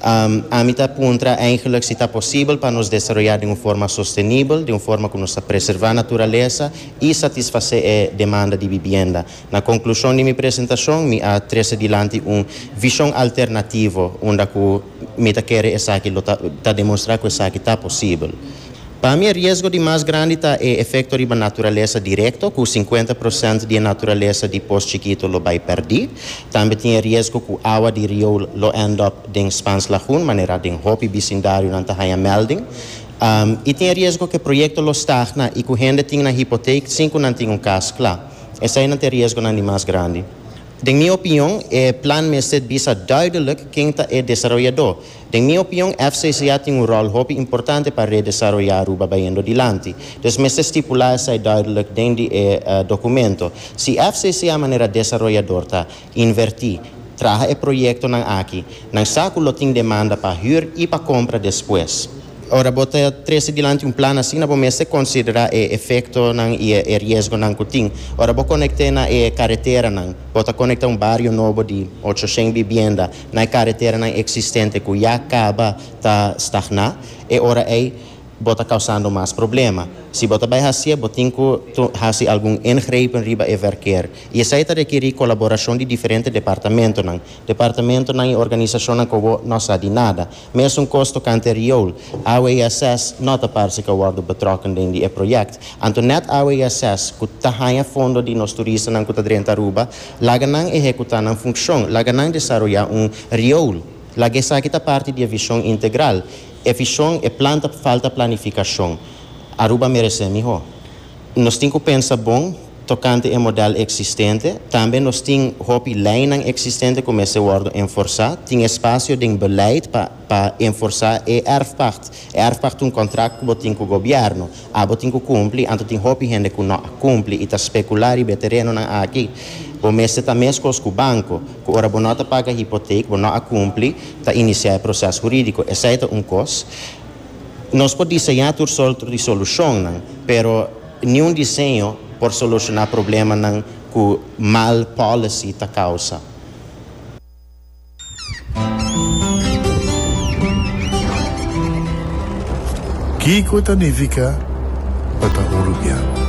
Ami ta puntra eigenlik si ta posibel pa nos desaroyá den un forma sostenibel, den un forma ku nos ta preservá naturalesa i satisfasé e demanda di bibienda. Na konklushon di mi presentashon mi a trese dilanti un vishon alternativo unda ku mi ta kere esaki lo ta ta demonstrá ku esaki ta posibel. Pa mi e riesgo di mas grandi ta e efekto riba naturalesa direkto, ku sinkuenta prosènt di e naturalesa di pos chikito lo bai pèrdí. Tambe tin e riesgo ku awa di rioul lo end up den Spans Lagoon, manera den hopi bisindarionan ta haña mèlding. I tin e riesgo ku e proyekto lo stagna i ku hende tin nan hipotake sin ku nan tin un kas kla. Eseinan ta e riesgonan di mas grandi. Den mi opinion, e plan mester bisa duidelik ken ta e desaroyadó. Den mi opion FCCA tin un ròl hopi importante pa redesaroyá Aruba bayendo dilanti. Dus mester stipulá esei duidelijk den di e dokumento. Si FCCA manera desaroyador ta invertí, traha e proyektonan aki, nan sa ku lo tin demanda pa hür i pa kompra despues. Ora bo ta trese dilanti un plan asina bo mester konsiderá e efektonan i e riesgonan ku tin. Ora bo konekte na e kareteranan, bo ta konektá un bario nobo di ocho shen bibienda. na e kareteranan eksistente ku ya kaba ta stagná, e ora ei bo ta kausando mas problema. Si bo ta bai hasié, bo tin ku hasi algun ingrepen riba e verkeer. I esei ta rekerí kolaborashon di diferente departamentonan, departamentonan i organisashonnan ku bo no sa di nada. Mesun kos tokante riool, awe i ases no ta parse ka worde betrokken den di e projekt. Anto net awe i ases ku ta haña fondo di nos turistanan ku ta drenta Aruba, laga nan ehekutá nan funkshon, laga nan desaroyá un riool, laga esaki ta parti di e vishon integral. E vishon, e plan ta falta planifikashon. Aruba meresé mihó. Nos tin ku pensa bon. Tokante e modèl eksistente, tambe nos tin hopi leinan eksistente ku mester wòrdu enforsá. Tin espasio den beleid pa pa enforsá e èrfpacht. E èrfpacht ta un kontrakt ku bo tin ku gobièrnu. Abo tin ku kumpli, anto tin hopi hende ku no a kumpli i ta spekulá riba e terenonan aki. Bo mester ta meskos ku banko, ku ora bo no ta paga hipotek, bo no a kumpli, ta inisiá e proses hurídiko. Esei ta un kos. Nos por diseñá tur sort di solushonnan, pero. Niun diseño por solucioná problemanan ku mal policy ta kousa. Kiko ta nifiká pa ta urubiano?